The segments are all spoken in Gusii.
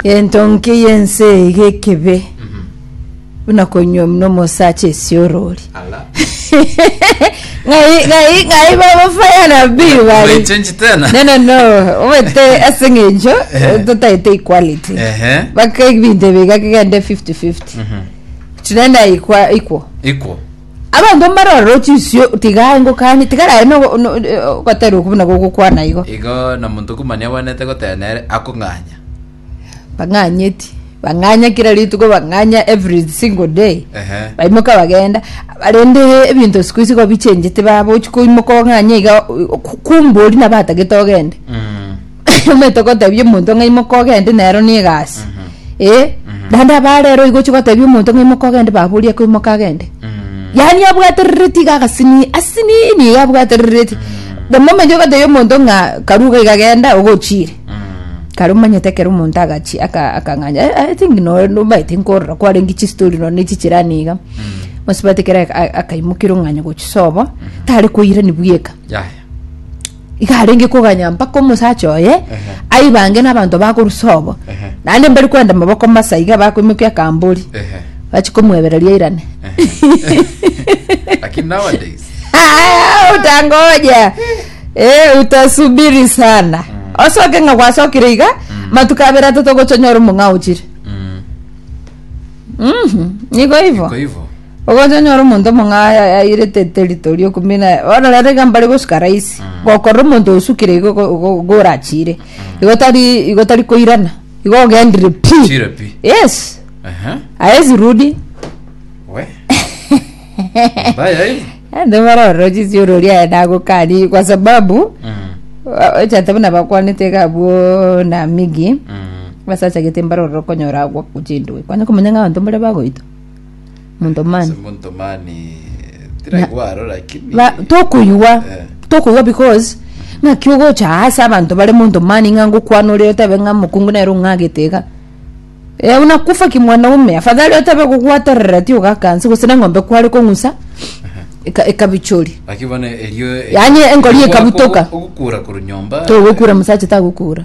Gento nki y'ense eye gekebe buna konywa muna omosacha esiorori. Ala. Ng'ai ng'ai ng'ai baba fire na bill bari. Umechange tena. No no no, obete ase ng'encho Eh. totaete equality. Ehe. Baka ebinto ebiga kegende 50-50. Chinenda ikwa ikwo. Equal. Abanto mbare ororoche isio tiga aye ngokanye, tiga raye no- no- ogoterwa okwo buna gogokwana igo. Igo na monto komani agwenerete goteba nere, akong'anya. Bang'anyeti, bang'anya kera rituko bang'anya every single day. Ehe. Baimoka bagenda, rende ebinto siku hizi igo bichenjete baba ochi koimoka ong'anye iga, kumbe oria nabo atagete ogende. Mm. omanyete gotebia omonto ng'a imoka ogende nero na egasi eh naende abaa rero igo ochia gotebia omonto ng'a imoka ogende baba oria koimoka agende yaani abwaterereti iga agasini asinini iga abwaterereti omomenyo ogotebia omonto ng'a karue iga iga genda ogochire kare omanyete ekero omonto agachi aka- akang'anya "Eh, eh, I think noo- nobaete nkorora kwarenge chistori nonye na echichirani iga ase omanyete ekero a- a- akaimoka erong'anya gochia sobo tare koirani bweka yaya iga arenge koganya mpaka omosacha oye Ehe. aibange n'abanto bakorusa obo Ehe. naende mbari kwenda maboko masa iga bakoimokia akambori Ehe. bachi komwebereria airane Lakini nowadays Ah, utangoja Eh, utasubiri sana osoke ng'a gwasokire iga matuko abere atatogochonyora omong'ao chire mm, Mhm, niko ivo kwa hivyo Ogocha onyore omonto omong'aai ayairete eterito riokumina bono rero iga mbare gosuka raisi gokorora omonto osukire igo go- go- gorachire igo tari igo tari koirana igo ogendire pi Chire pi. yes Ehe. aezi rudi We. Mbaya hii. ande bono ororo chisiorori aye nagokani kwa sababu Mm. o- ochete buna bakwanete iga abwo na migi Mm. basachagete mbare ororo konyora agwo chindwe kwani komanya ng'a abanto mbare bagoita Monto Ase mani. monto mani tiraigwa aro lakini Ba- tokoigwa Eh. tokoigwa because ng'aki ogocha ase abanto bare monto mani ng'a ngokwana ore otebe ng'a mokungu nere ong'agete iga Eh, buna kufa kimwanaume afadhali otebe gogwaterera ti ogakanse gose na eng'ombe kware kong'usa eka- ekabichori lakini bono erio Yani engori ekabutoka. ogokura korwa nyomba togokura mosacha tagokura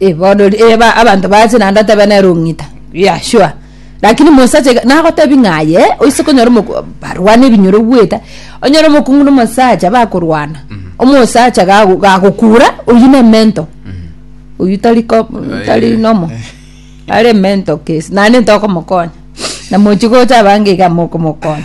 Iborori eh, ba- abanto bache naende otebe nere ong'ita yeah sure lakini mosacha iga- nagotebi ng'a aye eh, oise konyora omoku barwane ebinyoro bwete onyore omokungu na omosacha bakorwana omosacha gago gagokura oywo ne mento oywo tari ko tari Eh. nomo are emento case naende ntokomokonya na mochi gocha abange iga mokomokonya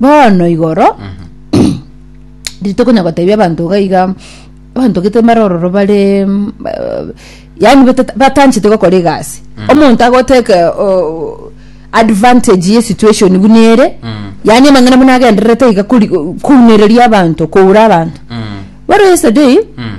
bono igoro rituko konya gotebia abanto iga iga abanto gete mbare ororo bare mm, eh, yaani bata- batanchete gokora egasi omonto agoteke oh, advantage ye situation buna ere Mm. yaani amang'ana buna agendererete iga kori- kounereria abanto koura abanto Mm. bono yesterday Mm.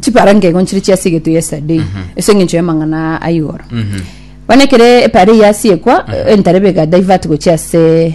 chipara nkego nchire chiasigetwe yesterday ase eng'encho y'amang'ana aa ayigoro bono ekero epara eye yasiekwa entarebe ega divert gochia ase